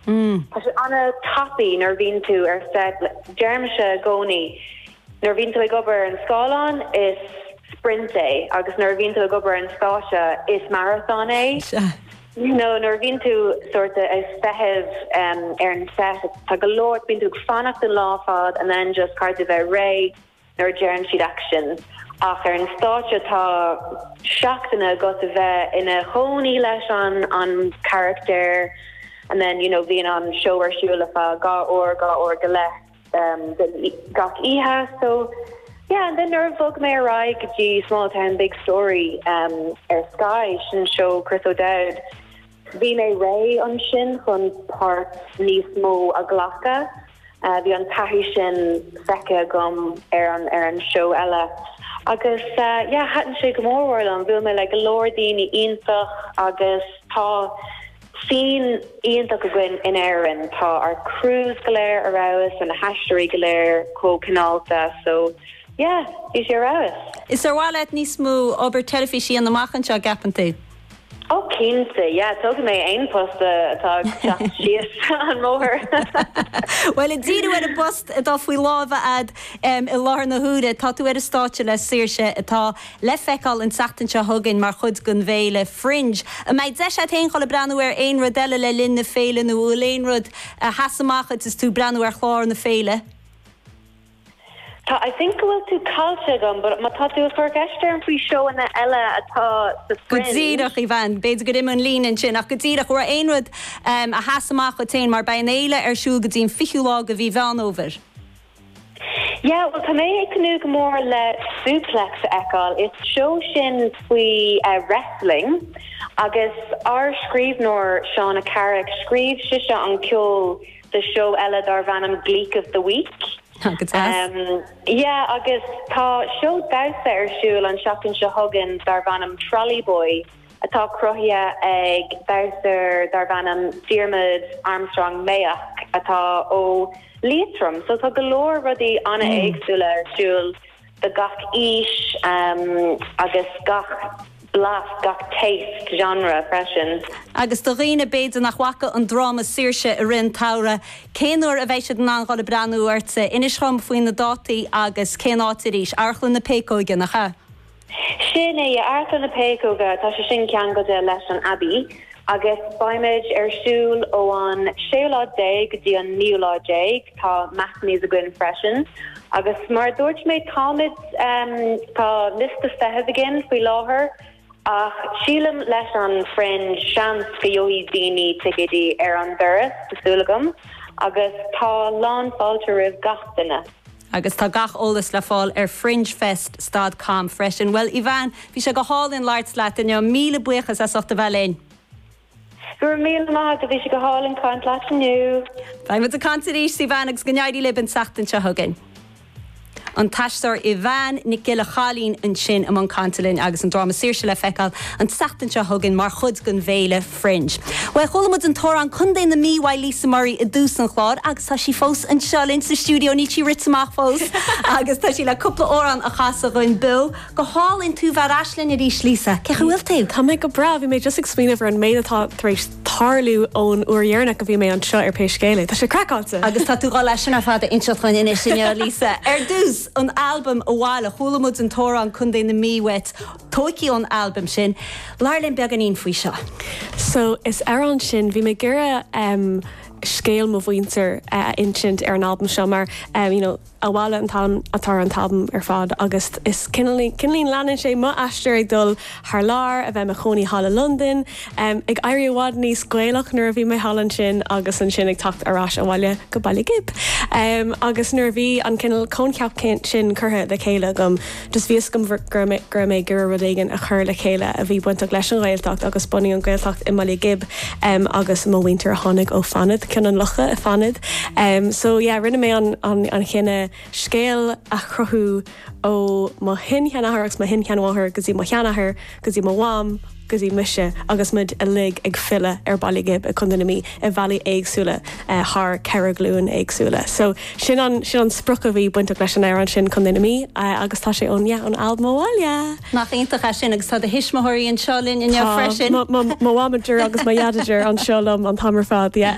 Umm. Tá sé an-tapaidh nuair a bhíonn tú ar set. Deirimise i gcónaí nuair a bhíonn tú ag obair ar an scáileán is sprint é agus nuair a bhíonn tú ag obair ar an stáitse is marathon é. Sea. Nó nuair a bhíonn tú sórt ag feitheamh ar an set tá go leor, bíonn tú ag fanacht an lá ar fad and then just caithfidh tú bheith réidh. nuair a deireann siad action ach ar an stáitse tá seachtainí agat a bheith ina chónaí leis an an charactair and then you know bhíonn an seó ar siúl ar feadh dhá uair dhá uair go leith de gach oíche so yeah and then nuair a bhog mé ar aghaidh go dtí Small Town Big Story ar Sky sin seó Chris O'Dowd Bhí mé réidh ansin chun páirt níos mó a ghlacadh. Bhí an taithí sin feicthe agam ar an ar an seó eile agus yeah, thaitin sé go mór mór liom. Bhuail mé le go leor daoine iontach agus tá scene iontach againn in Éirinn. Tá ár crews go léir ar fheabhas and na haisteoirí go léir chomh cineálta so yeah, bhí sé ar fheabhas. Is ar mhaith leat níos mó obair teilifíse a dhéanamh amach anseo, a gceapann tú? Ó cinnte, yeah, tógfaidh mé aon post atá ag teacht síos an mbóthar. Bhuel, ag díriú ar an bpost atá faoi lámha agat i láthair na huaire, tá tú ar an stáitse le Saoirse atá le feiceáil an tseachtain seo chugainn mar chuid den bhféile Fringe. An mbeidh deis agat féin dul ag breathnú ar aon rud eile le linn na féile nó an bhfuil aon rud a sheas amach duit is tú ag breathnú ar chlár na féile? Tá, I think go bhfuil tú caillte agam but má tá tú ag cur ceist orm faoi seóanna eile atá sa Go díreach, Fringe. Aoibheann. B'fhéidir gur imigh an líne ansin ach go díreach, an raibh aon rud a sheas amach duit féin mar beidh an fhéile ar siúl go dtí an 20ú lá de mhí Mheán Fhómhair? Yeah, bhuel tá mé ag tnúth go mór le Suplex a fheiceáil. Is seó sin faoi wrestling agus ár scríbhneoir Shauna Carrick, scríobh sise an ceol, do seó eile darbh ainm Gleek of the Week. Yeah agus tá seó damhsa ar siúl an tseachtain seo chugainn darbh ainm Trolley Boy atá cruthaithe ag damhsóir darbh ainm Diarmuid Armstrong Mayock atá ó Liatroim so tá go leor rudaí an-éagsúla ar siúl. do gach aois agus gach blas, gach taste, genre freisin. Agus do dhaoine b'fhéidir nach bhfaca an dráma Saoirse i rith an tsamhraidh, cén uair a bheidh siad in ann dhul ag breathnú uirthi? Inis dhom faoi na dátaí agus cén áit arís. Amharclann na Péacóige, nach ea? Sin é, Amharclann na Péacóige, tá sé sin ceangailte leis an Abbey agus beimid ar siúl ó an séú lá déag go dtí an naoú lá déag. Tá matinees againn freisin agus mar a dúirt mé táimid, tá liosta feithimh againn faoi láthair ach sílim leis an Fringe seans go gheobhaidh daoine ticeidí ar an doras, tá súil agam, agus tá lán fáilte roimh gach duine. Agus tá gach eolas le fáil ar fringefest dot com freisin. Bhuel Yvanne, bhí sé go hálainn labhairt leat inniu. Míle buíochas as ucht a bheith linn. Go raibh míle maith agat, bhí sé go hálainn ag caint leat inniu. Beidh muid ag caint arís Yvanne agus go n-éirí libh an tseachtain seo chugainn. An t-aisteoir Yvanne Nic Giolla Chaillín ansin i mbun cainte linn agus an dráma Saoirse le feiceáil an tseachtain seo chugainn mar chuid den bhféile Fringe. Bhuel, chuala muid an t-amhrán Contae na Mí ó Lisa Murray i dtús an chláir agus tá sí fós anseo linn sa stiúideo, níl sí rite amach fós agus tá sí le cúpla amhrán a chasadh dhúinn beo. Go hálainn, tú bheith ar ais linn arís Lisa, cén chaoi a bhfuil tú? Tá mé go breá, bhí mé just ag smaoineamh ar an méid atá tar éis tarlú ón uair dheireanach a bhí mé anseo ar pé scéal é, tá sé craiceáilte! Agus tá tú le leath de sin ar fad a inseacht dhúinn anois inniu Lisa. Ar dtús, an albam Abhaile, chuala muid an t-amhrán Contae na Mí uait, tóigthí ón albam sin. Labhair linn beagáinín faoi seo. So, leis an amhrán sin, bhí mé ag iarraidh scéal mo mhuintir a insint ar an albam seo mar, you know, abhaile an t-ainm atá ar an albam ar fad agus is cineál leanann sé mo aistear ag dul thar lear, a bheith i mo chónaí thall i Londain, ag éirí i bhfad níos Gaelach nuair a bhí mé thall ansin agus ansin ag teacht ar ais abhaile go Baile Ghib agus nuair a bhí an cineál coincheap sin curtha le chéile agam, Bhí a fhios agam go raibh mé ag iarraidh rud éigin a chur le chéile a bhí bainteach leis an Ghaeltacht agus bunú an Ghaeltacht i mBaile Ghib agus mo mhuintir a tháinig ó Fánaid, Cionn an Locha i Fánaid. So yeah, rinne mé an cinneadh scéal a chruthú ó mo shin-sheanathair agus mo shin-sheanmháthair go dtí mo sheanathair, go dtí mo mham, go dtí mise agus muid uilig ag filleadh ar Baile Ghib i Co. na Mí i bhealaí éagsúla thar ceithre ghlúin éagsúla. So sin an sin an sprioc a bhí bainteach leis an amhrán sin Co. na Mí agus tá sé ón yeah ón albam Abhaile! Nach iontach é sin agus tá do thuismitheoirí anseo linn inniu freisin. Tá mo mhamager agus mo dhadager anseo liom an t-am ar fad yeah.